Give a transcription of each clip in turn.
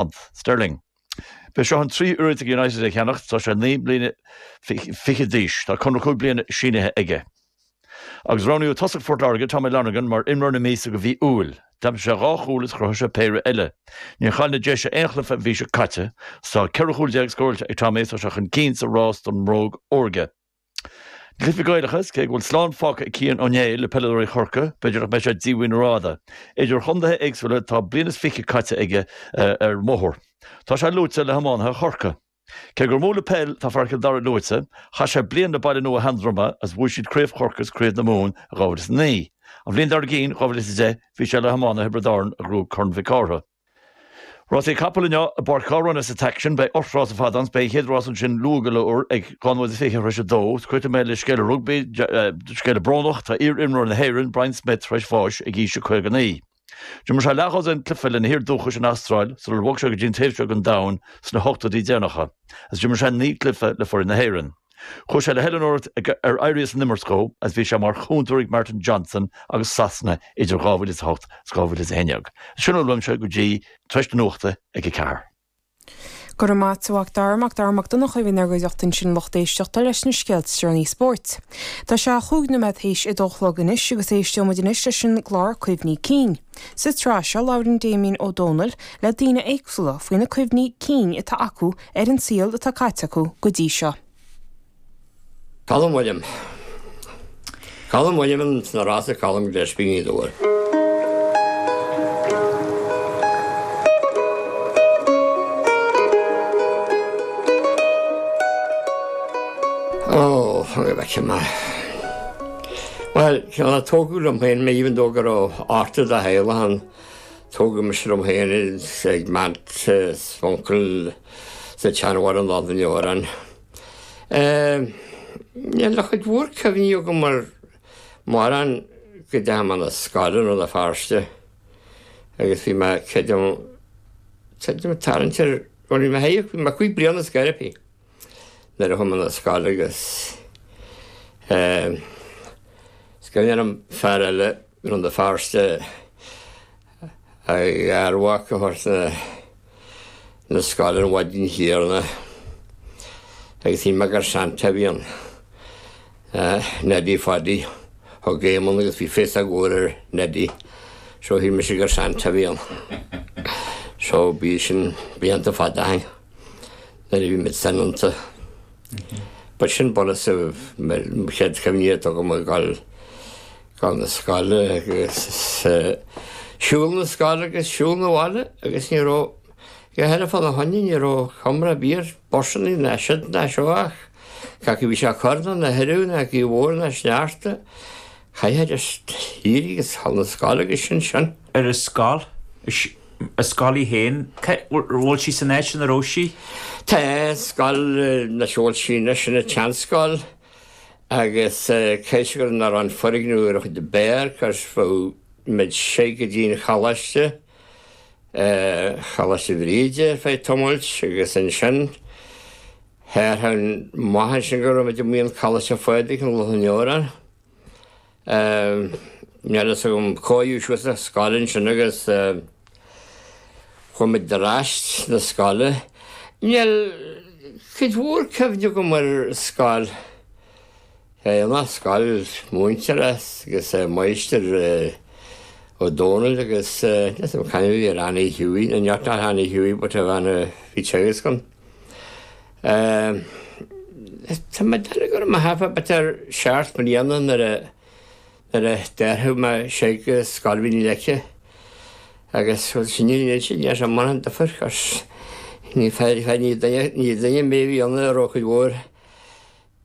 punt sterling. B'é seo an tríú iarracht ag United é a cheannacht. Tá sé naoi mbliana fichead d'aois. Tá conradh cúig bliana sínithe aige. Agus roghnaíodh tosach Phort Láirge, Tommy Lonergan, mar imreoir na míosa do mhí Iúil. D'aimsigh sé dhá chúl is chruthaigh sé péire eile. Níor chaill na Déise aon chluiche an mhí seo caite. Tá ceithre chúl déag scóráilte ag Tommy is tá sé chun cinn sa rás don mbróg órga. Cluichí Gaelacha is, cé go bhfuil slán fágtha ag Cian Ó Néill le peileadóirí Chorcaí, b'fhéidir nach mbeidh sé díomhaoin rófhada. Idir chontaetha éagsúla tá bliain is fiche caite aige ar an mbóthar. Tá sé luaite le hiománaithe Chorcaí. Cé gur mó le peil atá fear Chill Dara luaite, chaith sé bliain le Baile Nua Sheandroma agus bhuaigh siad Craobh Chorcaí is Craobh na Mumhan in 2009. An bhliain dár gcinn, 2010, bhí sé le hiománaithe Thiobraid Árann a ghnóthaigh Corn Mhic Cárthaigh. Rásaí capall inniu i bPáirc Ghabhráin as an taic sin, beidh ocht rás ar fad ann is, beidh an chéad rás ansin luath go leor ag dhá nóiméad is fiche tar éis a dó. Críochnóidh mé le scéal rugbaí, scéal brónach, tá iar-imreoir na hÉireann, Brian Smith, tar éis bháis ag aois 59. D'imir sé leathdhosaen cluiche lena thír dhúchais an Astráil sular bhog sé go dtí an taobh seo den domhan sna hochtóidí deireanacha, agus d'imir sé naoi gcluiche le foireann na hÉireann. Chuaigh sé le hoiliúnóireacht ar éirí as an imirt dhó agus bhí sé mar chúntóir ag Martin Johnson agus Sasana idir 2008 is 2011. Sin a bhfuil uaimse go dtí tar éis na nuachta ag a ceathair. Go raibh maith agat Mac Dara. Mac Dara Mac Donncha a bhí inár gcuideachta ansin lucht éisteachta leis na scéalta is deireanaí spóirt. Tá sé cúig nóiméad théis a dó a chlog anois agus éistfidh muid anois leis an gclár Cuimhní Cinn. Sa tsraith seo labhrann Damien Ó Dónaill le daoine éagsúla faoi na cuimhní cinn atá acu ar an saol atá caite acu go dtí seo. Colm Uilliam. Colm Uilliam in sna rásaí Colm Gillespie Ní Dhubhair. Ó, fágfaidh mé sin mar. Bhuel, chan á tógadh liom féin mé, even though go raibh ochtar de theaghlach ann, tógadh mise liom féin ag m'aunt 's m'uncail sa tseanabhaile i Loch na nDeorán. Níl cuid mhór cuimhní agam ar mhórán go dtí am na scoile i Rann na Feirste agus bhí mé, creidim, tarraingt ar, bhuel bhí mé, bhí mé cúig bliana is gaire, I think. nuair a chuaigh mé 'na scoile agus eh is cuimhin liom fear eile as Rann na Feirste a gharmhac a thabhairt 'na 'na scoile ar an mhaidin chéanna agus shíl mé gur Santa a bhí ann eh Neddy Phaddy thug Éamon agus bhí féasóg mhór ar Neddy so shíl mise gur Santa a bhí ann so bhí sin blianta fada ó shin. nuair a bhí muid soineanta. But sin bunús an chéad chuimhne atá agam ag gabháil na scoile agus siúl na scoile agus siúl na bhaile agus ní raibh, a dhath eile fána choinne, ní raibh iomrá ar bith ar bhusannaí ná siúd ná seo ach cé acu a bhí sé ag cur nó ina thuradh nó gaoth mhór nó sneachta, Caithfidh tú éirí agus a ghabháil na scoile agus sin sin. Ar an scoil? An scoil í féin? Bhfuil sí san áit chéanna a raibh sí? Tá, scoil bhuel tá sí anois ina seanscoil agus cionn is nach raibh an foirgneamh ar an chuid ab fhearr, cuireadh muid síos go dtí an Choláiste. Coláiste Bhríde ar feadh tamailt agus ansin char fhan muid ansin go raibh muid amuigh in Coláiste Phádraig i Loch an Iúir. Níl a fhios agam cóiríodh suas a' scoil ansin agus chuaigh muid ar ais na scoile. Níl cuid mhór cuimhne agam ar scoil. Beidh an scoil múinteoirí agus Máistir Ó Dónaill agus Lios an Chainnín ar Annie Hughie, no neart not Annie Hughie but of Anna bhí ag teagasc agam Tá mé ag déanamh go raibh mé thart fá b'fhéidir seacht mbliana nuair a nuair a d'athraigh mé síos go Scoil Mhín na Leice agus bhuel sin an iad sin leis an mbain an dufair cos ní fear fear ní duine ní duine mé bhí ionadh ar Eochaidh Mhóir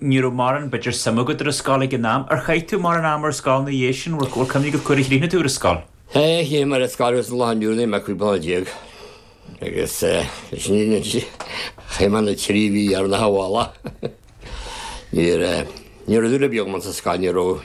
Ní raibh mórán b'fhéidir suim agat ar an scoil ag an am. Ar chaith tú mórán ama ar scoil ina dhiaidh sin? Bhfuil cuimhne agat cá huair a chríochnaigh tú ar an scoil? Aye, chríochnaigh mé ar an scoil agus an lá inniu níl mé cúig bliana déag agus eh sin iad na trí, chaith mé na trí mhí ar na hAbhalla. Níor eh, ní raibh dúil ar bith agam sa scoil, ní raibh.